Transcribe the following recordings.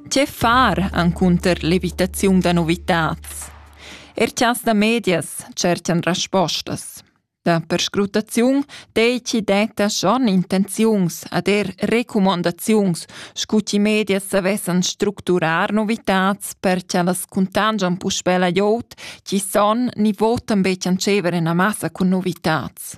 Tge far encunter l'evitaziun da novitads? Er chas da medias tschertan respostas. Da perscrutaziun deiti detta schon intenziuns ad er recumandaziuns, scu chi medias savessan structurar novitats per cha las cuntangian puspè la jout, chi son ni votan be tschancever ina massa cun novitats.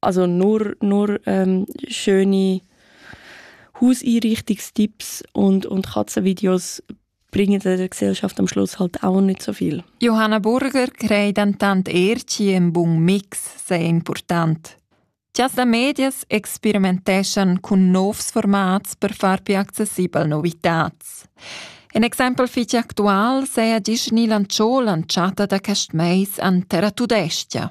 Also nur, nur ähm, schöne Hauseinrichtungstipps und, und Katzenvideos bringen der Gesellschaft am Schluss halt auch nicht so viel. Johanna Burger crei dentant Erci im bun mix sehr important. Gias da Medias experimenteschan cun novs formats per far più accessibel novitats. Un exempel fitg actual seia gis ni lanciò lanciata da quest meis an Terra Tudestia.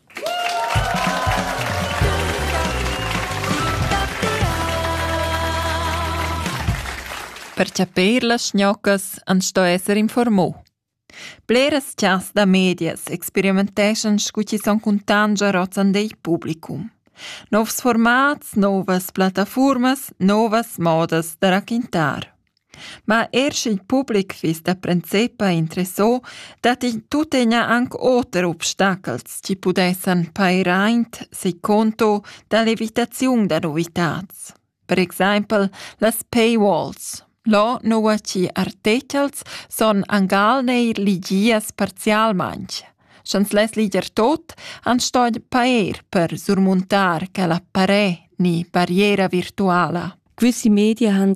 Per chapir las schnoccas ans sto esser informù. Bleras chas da medias experimenteschan scu chi son cuntan già rozzan dei publicum. Novs formats, novas plattafurmas, novas modas da raquintar. Ma eir sch'il public fiss da princepa interessà, datti tuttegna anc oter obstachels chi pudessan pair aint seis conto da l'evitaziun da novitats. Per exaimpel las paywalls. Là noua chi artechels sun angal neir ligias parzialmaing. Sch'ans less liger tot, ans sto pair per surmuntar quella parè ni barriera virtuala. Questi Medien haben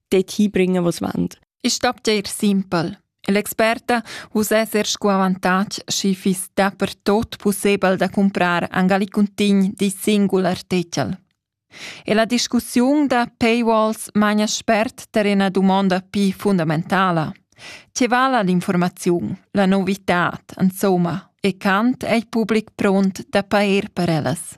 dort hinbringen, was wollen. Ist Abwehr simpel. L'experta uss esser sco avantatg schi fiss da per tot possibel da comprar Angalicuntin di singul artikel. E la discussiun da paywalls magna spert ter una domanda pi fundamentala. Che vala l'informaziun, la novità, insomma, e quant è il pubblic pront da pair per ellas?